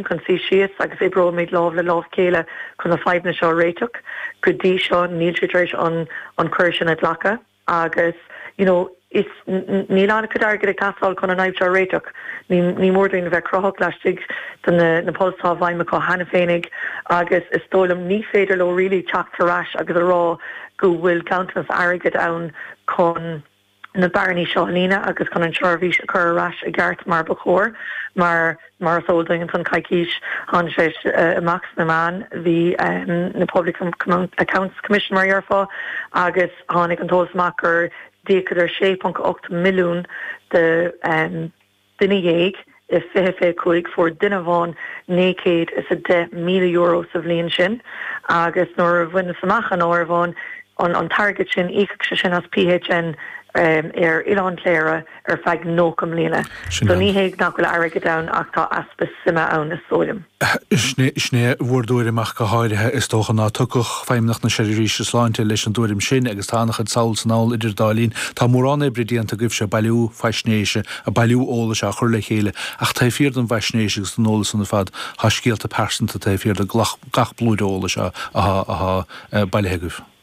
chun suí síos agus oibreoimid lámh le lámh chéile chun na fadhbanna seo a réiteach. Go dtí seo níl siad tar éis an an cuireadh sin a ghlacadh agus you know is níl an-chuid airgid ag teastáil chun an fhadhb seo a réiteach. Ní ní mór dúinn a bheith cruthach laistigh de na na pols atá i bhfeidhm acu cheana féinig agus is dóigh liom ní féidir leo really teacht tar ais agus a rá go bhfuil ganntanas airgid ann chun na bearnaí seo a líonadh agus chun an tseirbhís a chur ar ais i gceart mar ba chóir. Mar mar is eol duit, an coicís, tháinig sé amach sna meáin, bhí na Public Accounts Commission mar a déarfá, agus tháinig an t-eolas amach gur d'íocadar 6.8 milliún de, Duine dhéag i fiche fiche cúig fuair duine amháin naoi gcéad is a deich míle euro sa bhliain sin agus nuair a bhaineas amach an áireamhán, an t-airgead sin, íocfadh sé sin as PHN ar Oileán Chléire ar feadh nócha mbliana. So ní hé nach bhfuil airgead ann ach tá easpa suime ann is dóigh liom. Sin é bhur dtuairim ach go háirithe, is dócha, ná tiocfadh Feidhmeannacht na Seirbhíse Sláinte leis an dtuairim sin agus tá an-chuid sall is anall idir dá linn. Tá mórán oibre déanta agaibhse, bailiú faisnéise, ag bailiú eolais á chur le chéile, ach taobh thiar don bhfaisnéis agus don eolas san ar fad, tá scéalta pearsanta, taobh thiar do gach blúire eolais athá bailithe agaibh.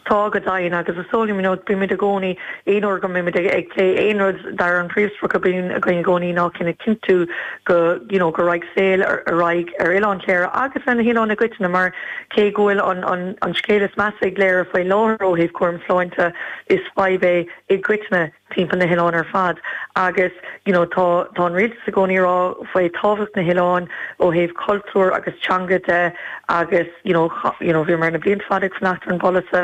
Tá, go deimhin. Agus is dóigh liom, you know, bímid i gcónaí, aon uair go mbeimid ag plé aon rud dar an príomhsprioc a bíonn againn i gcónaí ná cinn a chinntiú go, you know, go raghaidh saol ar aghaidh ar Oileán Chléire agus ar na hoileáin i gcoitinne mar cé go bhfuil an, an, an scéal is measa i gCléire faoi láthair ó thaobh cúram sláinte is fadhb é i gcoitinne. timpeall na hoileáin ar fad agus you know tá tá an rialtas i gcónaí a rá faoi tábhacht na hoileáin ó thaobh cultúir agus teanga de agus you know cha you know bhíomar na blianta fada ag fanacht ar an bpolasaí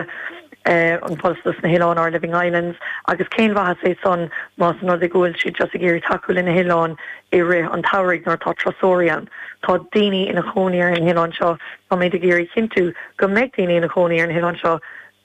eh an polasaí dos na hoileáin our living islands agus cén mhaitheas é san más an rud é go bhfuil siad just ag iarraidh tacú le na hoileáin i rith an tsamhraidh nuair atá turasóirí ann tá daoine ina chónaí ar na hoileáin seo táimid ag iarraidh a chinntiú go mbeidh daoine ina chónaí ar na hoileáin seo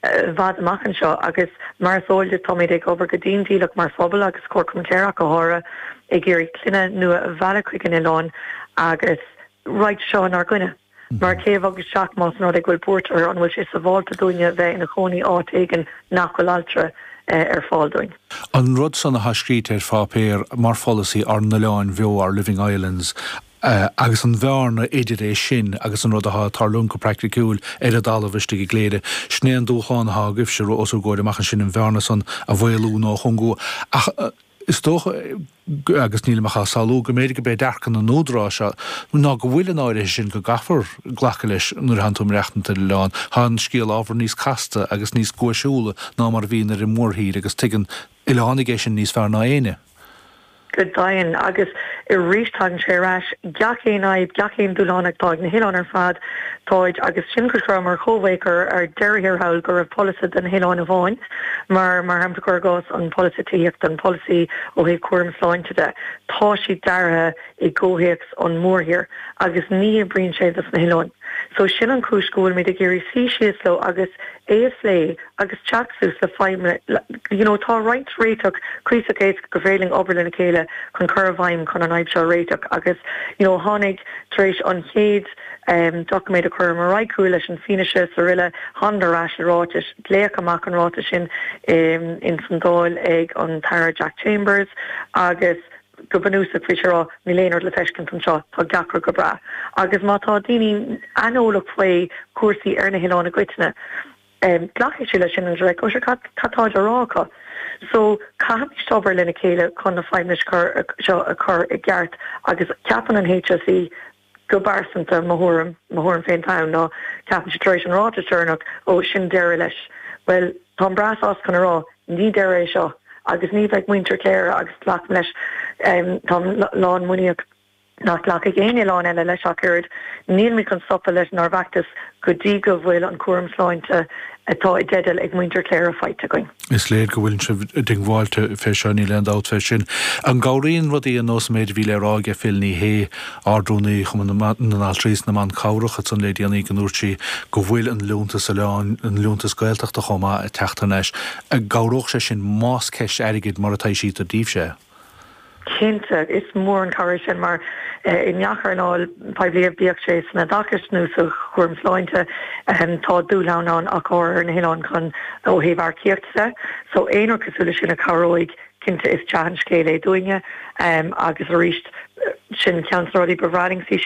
I bhfad amach anseo, agus mar is eol duit, táimíd ag obair go dian dícheallach mar phobal, agus Comharchumann Chléire ach go háirithe, ag iarraidh clainne nua a mhealladh chuig an oileán agus raghaidh seo inár gcoinne. Mar cé a bhog isteach más an rud é go bhfuil buairt orthu? An bhfuil sé sábháilte dúinne bheith ina chónaí áit éigin nach bhfuil altra ar fáil dúinn? An rud san athá scríte ar pháipéar mar pholasaí ár n-oileáin bheo, our living islands, agus an bhearna idir é sin agus an rud athá ag tarlúint go praicticiúil ar an dtalamh istigh i gCléire. Sin é an dúshlán athá agaibhse, os bhur gcomhair amach ansin, an bhearna san a mhaolú nó a chúngú. Ach is dócha, agus nílim ach ag samhlú, go mb'fhéidir go b'é dearcadh na n-údarás seo ná go bhfuil an áirithe sin go gcaithfear glacadh leis nuair athánn tú ag maireachtaint ar an oileán. Thá an scéal ábhar níos casta agus níos guaiseúla ná mar a bhíonn ar an mórthír agus tuigeann oileánaigh é sin níos fearr ná éinne. go deimhin. Agus arís tagann sé ar ais, gach aon fhadhb, gach aon dúshlán atá ag na hoileáin ar fad, táid, agus sin cúis gur mar Chomhdháil gur ar deireadh thiar thall go raibh polasaí do na hoileáin amháin, mar mar shampla cuir i gcás an polasaí tithíochta, an polasaí ó thaobh cúram sláinte de, tá siad deartha i gcomhthéacs an mhórthír agus ní oibríonn sé dos na hoileáin. So sin an chúis go bhfuilimid ag iarraidh suí síos leo agus é a phlé agus teacht suas le you know tá roinnt réiteach cuíosach éasca go bhféadfaimis obair lena chéile chun cur i bhfeidhm chun an fhadhb seo a réiteach agus you know tháinig tar éis an chéad em doiciméad a chuireamar ar aghaidh chucu leis an fianaise sa tuilleadh thángadar ar ais le ráiteas léadh amach an ráiteas sin i ins an Dáil ag an tAire Jack Chambers agus go bunúsach fé mar a déarfá, níl aon rud le feiscint anseo, tá gach rud go breá. Agus má tá daoine aineolach faoi chúrsaí ar na hoileáin i gcoitinne, glacfaidh siad leis sin agus like, oh sure, cad táid á rá acu? So, caithfimíst obair lena chéile chun na fadhbanna seo a chur i gceart agus má cheapann an HSE, Go bpearsanta, mo thuairim, mo thuairim féin atá ann, ná ceapann siad tar éis an ráiteas deireannach, ó, sin deireadh leis. Bhuel, táim breá sásta chun a rá, ní deireadh é seo. Agus ní bheidh muintir Chléire agus glacaim leis, táim lán muiníeach nach nglacfaidh aon oileán eile leis ach oiread, nílimid chun stopadh lenár bhfeachtas go dtí go bhfuil an cúram sláinte atá i dteideal ag muintir Chléire faighte againn. Is léir go bhfuileann sibh diongbháilte fé seo, níl aon dabht fé sin. An gcabhraíonn rudaí ar nós an méid a bhí le rá aige Phil Ní Sheaghdha, Ard-Rúnaí Chumann na nAltraí 's na mBan Cabhrach ansan le déanaí go ndúirt sí go bhfuil an liúntas oileán, an liúntas Gaeltachta chomh maith ag teacht thar n-ais, an gcabhródh sé sin más ceist airgid mar a thaibhsítear daoibh-se? Cinnte, is mór an cabhair é sin mar i ngach earnáil poiblí, bíodh sé san oideachas nó sa chúram sláinte, tá dúshláin ann ach go háirithe ar na hoileáin chun, ó thaobh earcaíochta de. So aon rud cosúil leis sin a chabhróidh, cinnte is dea-scéal é dúinne agus arís sin ceann de na rudaí ba bhreá linn go